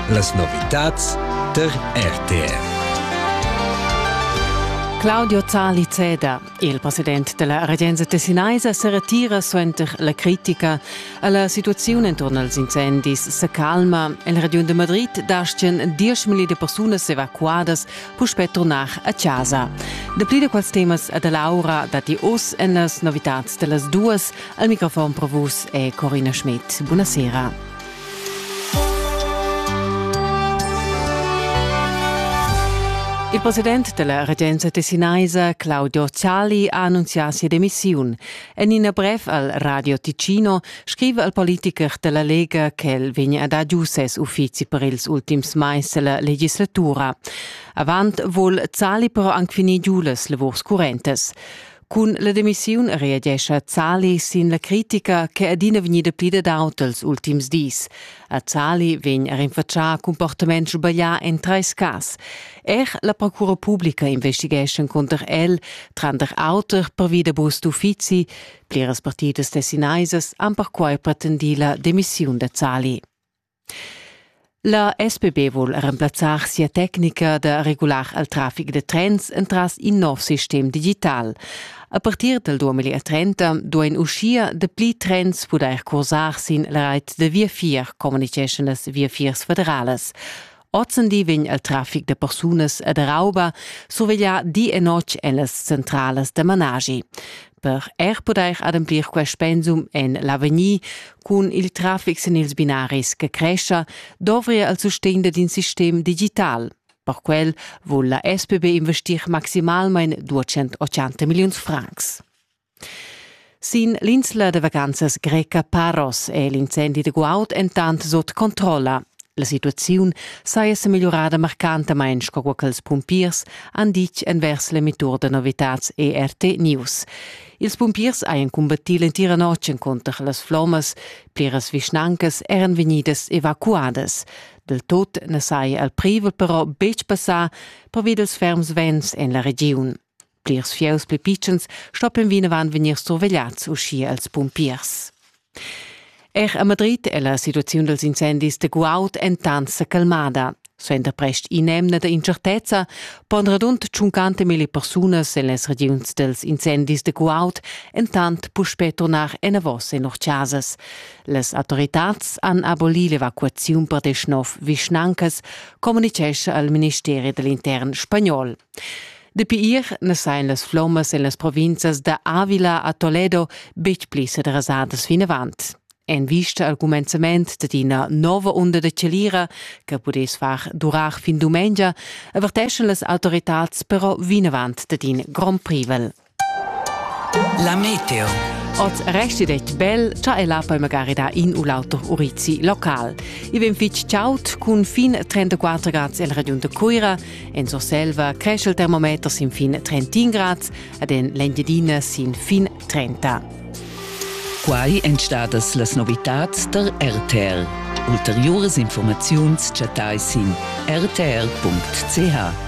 Las novitads tar RTR. Claudio Zali Zeda, il president della Regenza tessinaisa, se retira suenter la critica. La situazione intorno als incendis se calma. Il Region de Madrid dastien 10.000 de persunas evacuadas puspè tornar a casa. De pli de quals temas da Laura dati oz en las novitats dellas duas Al microfon per vus è Corina Schmidt. Buonasera. Il president della regenza tessinaisa Claudio Zali ha annunziato sia demissione e in una brev al Radio Ticino scrive al politiker della Lega che el vegna a dar giù ses uffizi per ils ultims mais della legislatura. Avant vuol Zali però anche finire giù le lavors currentes. Cun la demissiun reagescha Zali sin la critica che è adina vegnida plida d'aut els ultims dis. A Zali vegn er rinfatschà cumportament sbaglià en trais cas. Er la procura publica investighescha cunter el, tranter auter pervi da bus d'uffizi. Pliras partidas tessinaisas han perquai pretendì la demissiun da Zali. La SPB vul remplazzar sia tecnica da regular il traffic da trens entras in nov sistem digital. A partir del 2030 duein uschia dapli trens pudair cursar sin la reit da viafier, communiceschan las viafiers federales. Ozendi vegn il traffic da persunas e da rauba surveglià di e notg en las centrales da managi. per er pudair ademplir quest pensum en l'avegnir cun il traffic sin ils binaris che crescha, dovria il sustegn d'in sistem digital. Per quel vul la SPB investir maximalmain 280 milliuns francs. Sin l'insla de vacanzas greca Paros è l'incendi de guaud entant sot controlla. La situaziun saja semegliurada marcantamain sco quella ch'ils pumpiers han ditg envers l'emittur da novitads ERT News. Ils pumpiers hajan cumbattì l'entira notg encunter las flommas. Pliras vischnancas eran vegnidas evacuadas. Del tut na saja il privel però betg passà pervi dals ferms vents en la regiun. Plirs fieus pli pitschens stoppen vinavant vegnir survegliads uschia als pumpiers. Er a Madrid è la situaziun dals incendis da guaud entant sa calmada. Suenter prest in'emna da incertezza pon radund 50.000 persunas en las regiuns dals incendis da guaud entant puspè turnar enavos en lur chasas. Las autoritads han abolì l'evacuaziun per deschnov vischnancas, communitgescha al ministeri da l'intern spagnol. Dapi ir ne sein las flommas en las provinzas da Avila a Toledo betg pli sedresadas vinavant. En vista al cumenzament da ina nova onda da celira che pudess far durar fin dumengia, averteschan las autoritads però vinavant da in grond privel. La meteo. Oz resti det bel, cha ella poi magari da in u l'auter urizi local. I vem fitg chaut cun fin 34 grads el regiun de Cuira, en Surselva cresce il termometer sin fin 31 grads ed en l'Engiadina sin fin 30. Quai èn stadas las novitads der RTL. Ulteriores Informaziuns chattai sin rtl.ch.